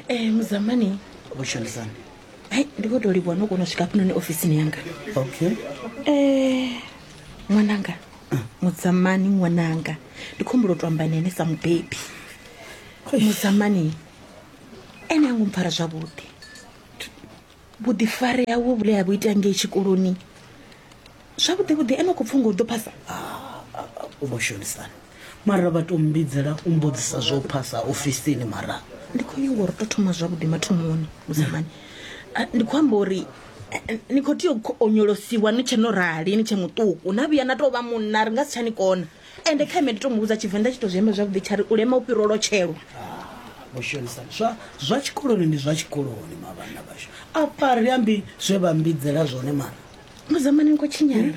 Eh, muzamani vhushandisani hai ndi khou tou livhuwa no kona u swika hafhanoni ofisini yanga okay Eh, ṅwananga mudzamani ṅwananga ndi khou humbula u tou amba na ene sa mubebi mudzamani ene a ngo mpfara zwavhuḓi vhuḓifari hawe vhule ha vhu ita ngei tshikoloni zwavhuḓi vhuḓi ene khou pfunga u ḓo phasa u vho shonisana mara vha to mbidzela u mbudzisa zwo phasa ofisini mara ndi khou nyanga uri to thoma zwavhuḓi mathomoni musamani ndi khou amba uri ni khou tea u onyolosiwa ni tshe no rali ni tshe muṱuku na vhuya na tou vha munna ri nga si tsha ni kona ende kha ime ndi to muvhudza tshivenḓa tshi to zwi amba zwavhuḓi tsha ri u lema u fhira u lotshelwa vhoshonisana ah, zwa zwa tshikoloni ndi zwa tshikoloni mavhana vhashu afha ri ambi zwe vha mbidzela zwone mara muzamani ni khou tshinyala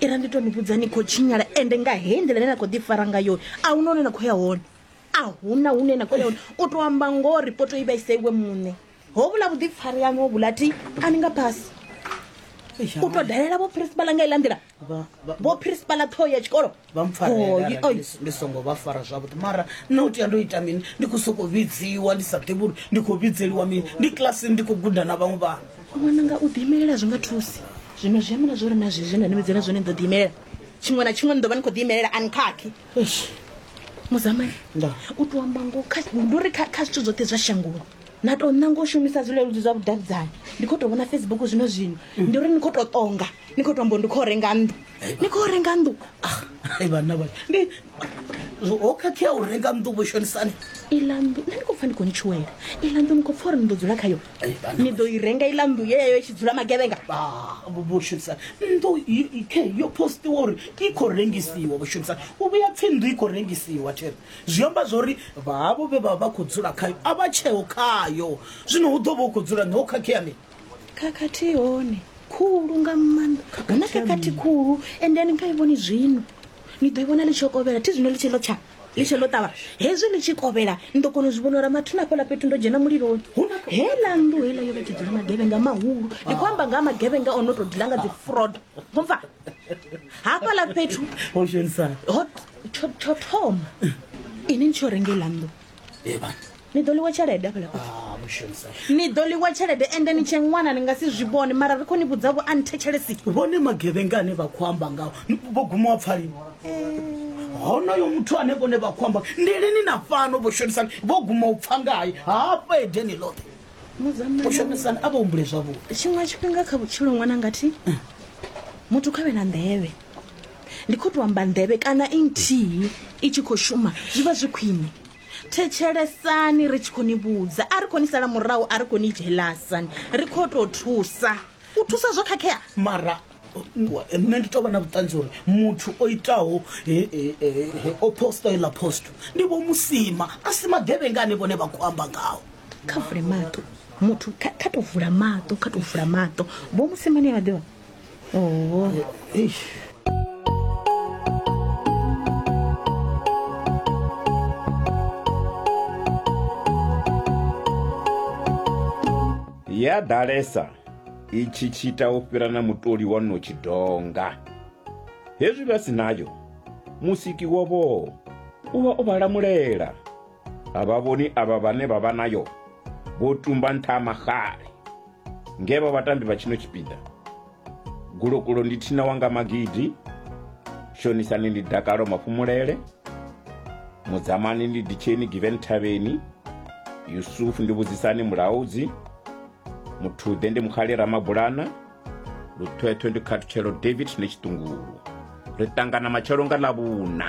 ira ndi to ni vhudza ni khou tshinyala ende nga hei nḓila ine na khou ḓifara nga yoyo a hu na hune na khou ya hone a huna hune na khou ya hone u to amba ngoho ripoto i vhaisa iwe muṋe ho vhula vhuḓifari yaṋu ho vhula ti a ni nga phasi u to dalela vho principal nga iḽa nḓila vho principala ṱhoho ya tshikolo vha mpfarndi songo vha fara zwavhuḓi mara nṋe u tea ndo ita mini ndi khou sokou vhidziwa ndi sa ḓivhi uri ndi khou vhidzeliwa mini ndi kilasini ndi khou guda na vhaṅwe vhana ṅwananga u ḓiimelela zwi nga thusi zwino zwi amana zwo ri na zwezwi nda ni vhidzela zwone ni ḓo ḓiimelela tshiṅwe na tshiṅwe ni ḓo vha ni khou ḓiimelela ani khakhi muzamani u tou amba ngo ndi uri kha zwithu zwoṱhe zwa shangoni na tou ṋanga u shumisa zwileludzi zwa vhudavhidzani ndi khou tou vhona facebook zwino zwino ndi uri ni khou tou ṱonga ni khou tombo ndi khou renga nnḓu ni khou renga nnḓu ah, ai vhanna vha ndi ho khakhea u renga nnḓu vho shonisani iḽa nnḓu nṋe ni khou pfa ndi khou ni tshuwela iḽa nnḓu ni khou pfa uri ni ḓo dzula khayo ni ḓo i renga iḽa nnḓu yeyo i tshi dzula magevhenga ah, vho shonisani nnḓu khe yo postiwa uri i khou rengisiwa vho shonisani u vhuya pfhi nnḓu i khou rengisiwa there zwi amba zwa uri vhahavho vhe vha vha khou dzula khayo a vha tsheo khayo zwino hu ḓo vha u khou dzula nṋe ho khakhea mini khakhathi hone khulu nga maanḓa huna khakhathi khulu and then kha i vhoni zwino ni ḓo i vhona ḽi tshi yo kovhela thi zwino ḽi tshi ḽo tsha ḽi tshi ḽo ṱavha hezwi ḽi tshi kovhela ni ḓo kona u zwi vhona uri mathina hafhaḽa fhethu ndo dzhena muliloni heila nnḓu heila yo vha tshi dzula magevhenga mahulu ndi khou amba nga ha magevhenga o no tou dila nga dzi fraud mva hafhaḽa fhethu ho shonisa ho tsho tsho thoma ini ni tsho renga iḽa nnḓu Eh, bana ni ḓo ḽiwa tshelede afhala fhethu Ah, mushonisa. ni ḓo ḽiwa tshelede ende ni tshe ṅwana ni nga si zwi vhone mara ri khou ni vhudza vho a ni thetshelesi vhone magevhenga ane vha khou amba ngawo vho guma wa pfalini honoyo muthu ane vhone vha khou amba ndi lini na fhano vho shonisani vho guma u pfa ngaye hafha edeni ḽoṱhe vho mudzamana shonisani a vha humbule zwavhuḓi tshiṅwe tshifhinga kha vhutshilo ṅwana ngathi muthu kha vhe na nḓevhe ndi khou tou amba nḓevhe kana i nthihi i tshi khou shuma zwi vha zwi khwine thetshelesani ri tshi khou ni vhudza a ri khou ni sala murahu a ri khou ni jelasani ri khou tou thusa u thusa zwo khakhea mara nṋe ndi tou vha na vhuṱanzi uri muthu o itaho o posta iḽa posto ndi vho musima a si magevhenga ane vhone vha khou amba ngaho kha vule maṱo muthu kha tou vula maṱo kha tou vula maṱo vho musimane vha ḓivha ya ḓalesa i tshi tshita u fhira na mutoli wa no tshidonga hezwi vha si nayo musiki wovho u vha o vha lamulela a vha vhoni avha vhane vha vha nayo vho tumba nṱha ha maxale Nge vha vhatambi vha tshino tshipiḓa, Gulokulo ndi Thina Wanga Magidi, Shonisani ndi Dakalo Mafhumulele, Mudzamani ndi Ditsheni Given Thavheni, Yusufu ndi Vhudzisani Mulaudzi, Muthuḓe ndi Mukhali Ramabulana, Luthwethwe ndi Khathutshelo David Netshiṱungulu. Ri ṱangana matshelo nga Ḽavhuna.